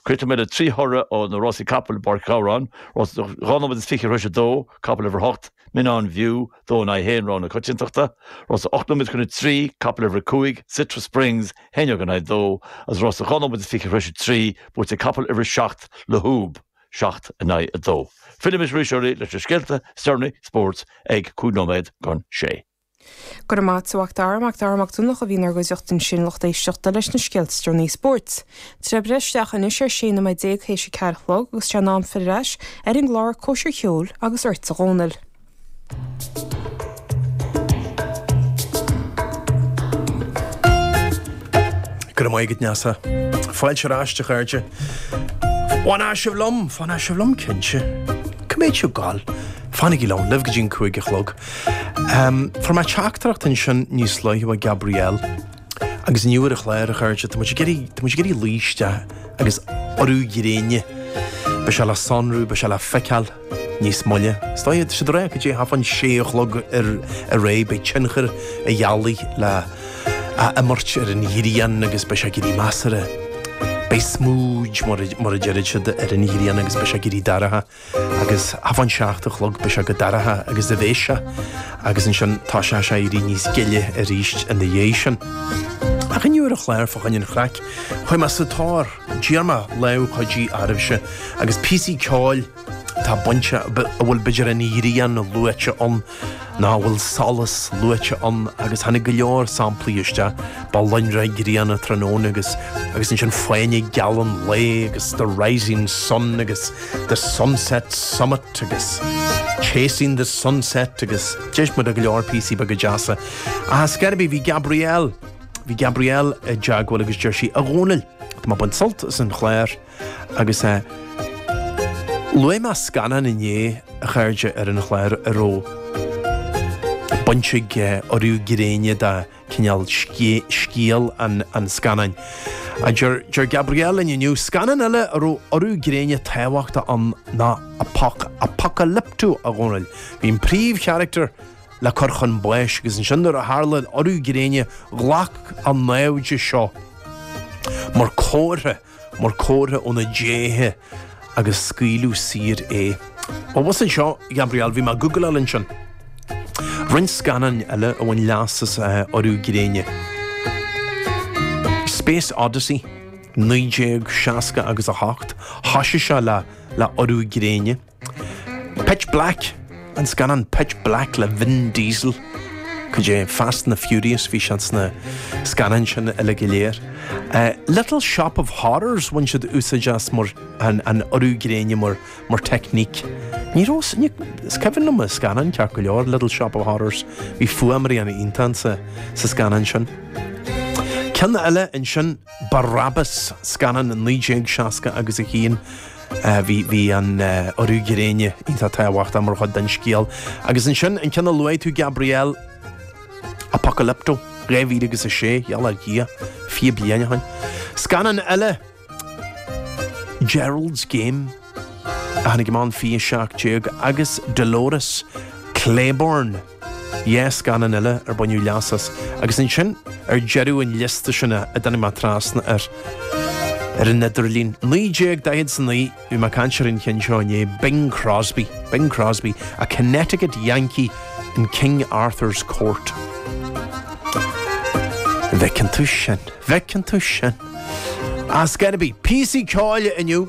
Críochnóidh mé le trí thoradh ó na Rásaí Capall i bPáirc Ghabhráin, Rás a dhá nóiméad is fiche tar éis a dó, capall uimhir a hocht, Mignon View, dó in aghaidh haon, Rogha na Coitiantachta, Rás a ocht nóiméad chun a trí, capall uimhir a cúig, Citra Springs, a haon déag in aghaidh a dó, agus Rás a dhá nóiméad is fiche tar éis a trí, buaite ag capall uimhir a seacht, La Hube, seacht in aghaidh a dó. Fillimis arís oraibh leis na scéalta is déanaí spóirt ag cúig nóiméad chun a sé. Go raibh maith agat a Mhac Dara, Mac Dara Mac Donncha a bhí inár gcuideachta ansin a lucht éisteachta leis na scéalta is déanaí spóirt. Tá sé ag breith isteach anois ar 16 nóiméad tar éis a ceathair a chlog agus tá sé in am filleadh ar ais ar an gclár Cóisir Cheoil agus ortsa a Dhónaill. Go raibh maith agat a Neasa. Fáilte ar ais a chairde. D'fhan sibh liom, d'fhan sibh liom cinnte. Coiméad seo ag goil. Fanaigí liom, linn go dtí'n cúig a chlog. Fuair mé teachtaireacht ansin níos luaithe ó Gabrielle agus inniu ar an chlár a chairde, Tá muid ag iarraidh, tá muid ag iarraidh luí isteach ar urú gréine. Beidh sé le sonrú, beidh sé le feiceáil níos moille. Is dóigh idir seo agus go dtí i ndiaidh an sé a chlog ar ar aghaidh, beidh tionchar an ghealaigh le a imirt ar an ghrian agus beidh sé ag éirí measartha, beidh smúid, mar a mar a deir siad, ar an ghrian agus beidh sé ag éirí dorcha. Agus fán seacht a chlog beidh sé chomh dorcha agus a bheas sé agus ansin tá sé ag éirí níos gile arís ina dhiaidh sin. Ach inniu ar an chlár fá choinne an chraic chuir mé sa tóir d'iarr mé lámh chuidithe oraibhse agus píosaí ceoil atá bainte a bhfuil b'fhéidir an ghrian luaite ann Ná a bhfuil solas luaite ann agus tháinig go leor samplaí isteach. Ba lonrach grian an tráthnóna agus agus ansin Fáinne Geal an lae agus The Rising Sun agus The Sunset Summit agus Chasing the Sunset agus d'éist muid go leor píosaí beaga deasa. Ach ar scor ar bith bhí Gabrielle. Bhí Gabrielle i dteagmháil agus deir sí, A Dhónaill, tá mé ag baint sult as an chláir. Agus é. Luaigh mé scannán inné a chairde ar an chláir a raibh baint ag urú gréine de chineál le scéal an scannáin. Deir Gabrielle linn inniu scannán eile a raibh urú gréine tábhachtach ann ná Apocalypto, a Dhónaill. Bhí an príomhcharachtar le cur chun báis agus ansin nuair a tharla urú gréine ghlac a naimhde seo mar comhartha mar comhartha óna déithe agus scaoileadh saor é. Ó shin i leith, Gabriel, bhí mé ag googláil ansin roinnt scannáin eile a bhain leas as urú gréine. Space Odyssey, 1968, thoisigh sé le hurú gréine. Pitch Black, an scannán Pitch Black le Vin Diesel. Cad é Fast and the Furious, bhí sé sna scannáin sin uile go léir. Eh, Little Shop of Horrors, bhain siad úsáid as mar an, an urú gréine mar, mar teicníc. Ní raibh sin, ní, is cuimhin liom an scannán ceart go leor, Little Shop of Horrors. Bhí fuaimrian iontach sa, sa scannán sin. Ceann eile ansin, Barabbas, scannán 1960 agus 1. Bhí an urú gréine iontach tábhachtach mar chuid den scéal. Agus ansin an ceann a luaigh tú Gabriel Apocalypto 2006 gheall ar Dhia fiche bliain ó shin. Scannán eile Gerald's Game a tháinig amach in 2017 agus Dolores Claiborne. Dhá scannán eile ar baineadh leas as agus ansin ar deireadh an liosta sin a dtáinig mé trasna air ar an idirlíon. 1949 bhí mé ag caint ar an cheann seo inné, Bing Crosby, Bing Crosby, a Connecticut Yankee in King Arthur's Court. An bhfeiceann tú sin? An bhfeiceann tú sin? As gotta be píosaí ceoil inniu!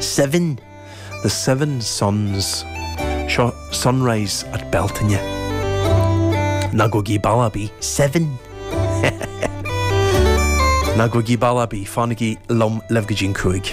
Seven, The Seven Suns, seo Sunrise at Bealtaine. Ná gabhaigí bealach ar bith, seven! Ná gabhaigí bealach ar bith, fanaigí liom libh go dtí an cúig.